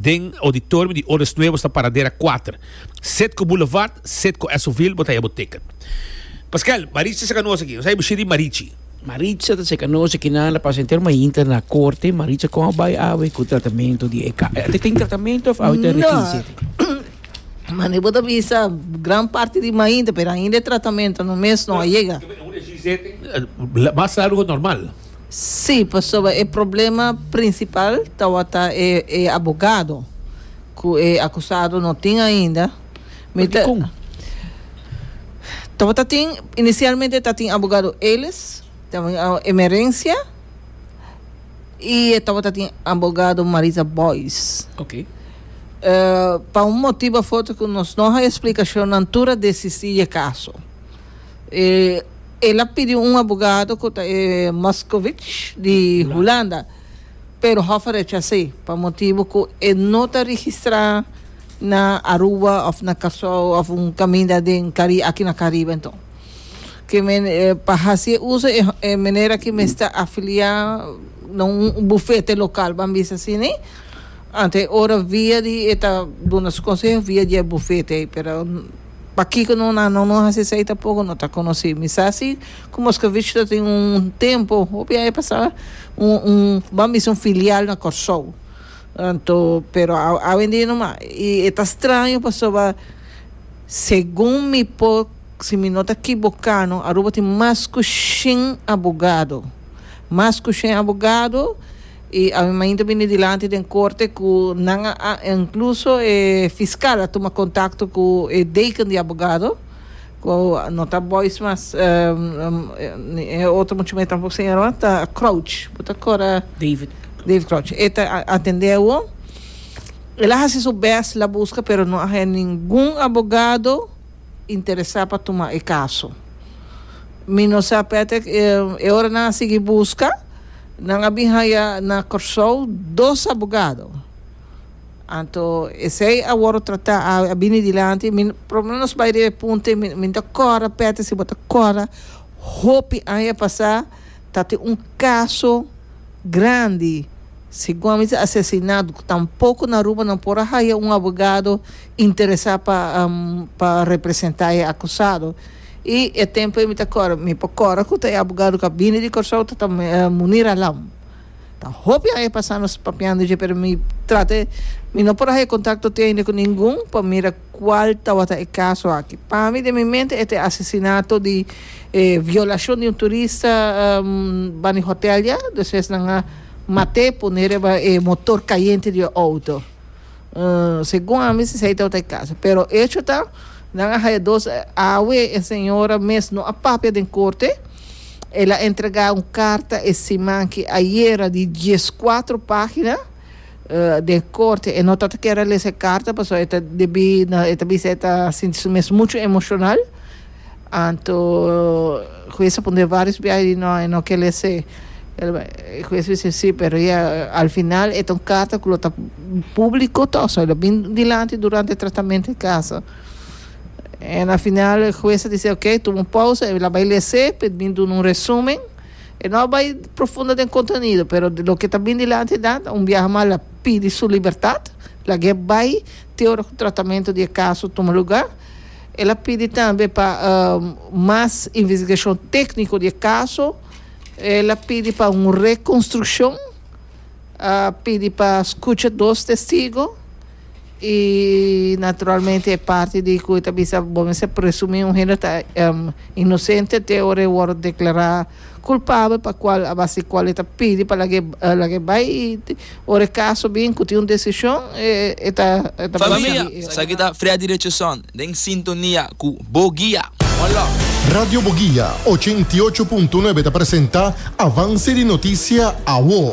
den auditorium di Odes Nuevos ta paradera kuater, set ku Boulevard, set ku Esovil, bo ta haya bo ticket. Paskel, Marichi ta ser kanosa aki, nos ta haya bo shiri Marichi. Marichi ta ser kanosa aki nan ta pasa henter mainta na korte, Marichi kon a bai awe ku tratamentu di e ka, e ta tin tratamentu òf awe ta rekinsi aki? No, mane bo ta bisa gran parti di mainta pero ainda e tratamentu no mes no a yega. Mas largo ku normal. Sí, pasobra e problema prinsipal tawata e e abogado ku e akusado no tin ainda. Mi ta Dikon? tawata tin inisialmente ta tin abogado Elis, ta tin a- Emerencia i e tawata tin abogado Marisa Boys. Ok. Eh, pa un motibu afortu ku nos no haña splikashonnan tur a desistí e kaso. el a pidi un abogado ku ta e Moscovic di Hulanda, pero Hof a rechas'é pa motibu ku e no ta registrá na Aruba òf na Kòrsou òf un kaminda den Kari aki na Karibe. Enton, ke men pa hasi e uso e meneer aki mester afiliá na un bufete lokal, ban bisa asini, anto e ora via di e ta duna su konseho via di e bufete ei, pero. Pakiko no na no no hasi esei tampoco no ta conoci mi sa si cu Moscovich ta tin un tempo hopi aña pasa un un bam bisa un filial na Corsou anto pero awendia no mas y e ta straño pasoba segun mi por si mi no ta kiboka no Aruba tin mas cu shen abogado mas cu shen abogado I a mainta a bini dilanti den korte ku nan a, inkluso e fiskal a tuma kontakto ku e deken di abogado, ku no ta Boys mas, ni e otro muchumé tampoco señora, ta Crouch, bo ta akorda? David Crouch. David Crouch. E ta atendé awo. El a hasi su bèst, el a buska, pero no a haña ningun abogado interesá pa tuma e kaso. Mi no sa p'e e ora nan a sigui buska, nan a bin haya na Kòrsou dos abogado. Anto esei a wòrdu tratá, a bini dilanti. Mi, por lo menos bai riba e punto ei, mi no ta kòrda, Petty, si bo ta kòrda hopi aña pasá Ta tin un kaso grandi segun a mester asesinado cu tampoco na Aruba nan por a haya un abogado interesa pa pa representa e acusado y e tempo ey mi ta cora mi por cora cu ta e abogado cu a bini di Curaçao ta ta Munir Alam ta hopi aña pasa nos papiando dje pero mi trata mi no por a haya contacto te ainde cu ningun pa mira. Cual tawata e caso aki? Pa mi den mi mente e ta e asesinato di e violacion di un turista banda e hotel ya, despues nan a mat'e pone riba e motor cayente di e auto. Segun ami si esey tawata e caso. Pero e hecho ta nan a haya dos awe e señora mes no a papia den corte, el a entrega un carta e siman aki ayera di diescuatro pagina, den corte e no ta ta kier a lesa e carta paso e ta debi e ta bisa e ta sinti su mes mucho emocional anto hues a punta e varios biaha di no e no kier lese e hues bisa si pero ya al final e ta un carta cu lo ta publico to so e lo bin dilanti durante e tratamento di caso en al final e hues a deci ok tuma un pausa e la bay lese pe bin duna un resumen. E no a bai profundo den contenido, pero loke ta bin dilanti e danta un biaha mas la pidi su libertad, lag'e bai te ora cu tratamento di e caso tuma lugar. El a pidi tambe pa mas investigacion tecnico di e caso, el a pidi pa un reconstruccion, a pidi pa scucha dos testigo. Y naturalmente e parti di cu e ta bisa bo mester presumi un hende ta em, inocente te ora e worde declara culpabel pa cual a base cual e ta pidi pa laga e laga e bay y te- ora e caso bin cu tin un decision e e ta e ta Familia, basa di e. Esaki ta Freddy Richardson den sintonia cu Boguia. Hola. Radio Boguia ochenta i ocho punto nuebe ta presenta Avance di Noticia, Awo.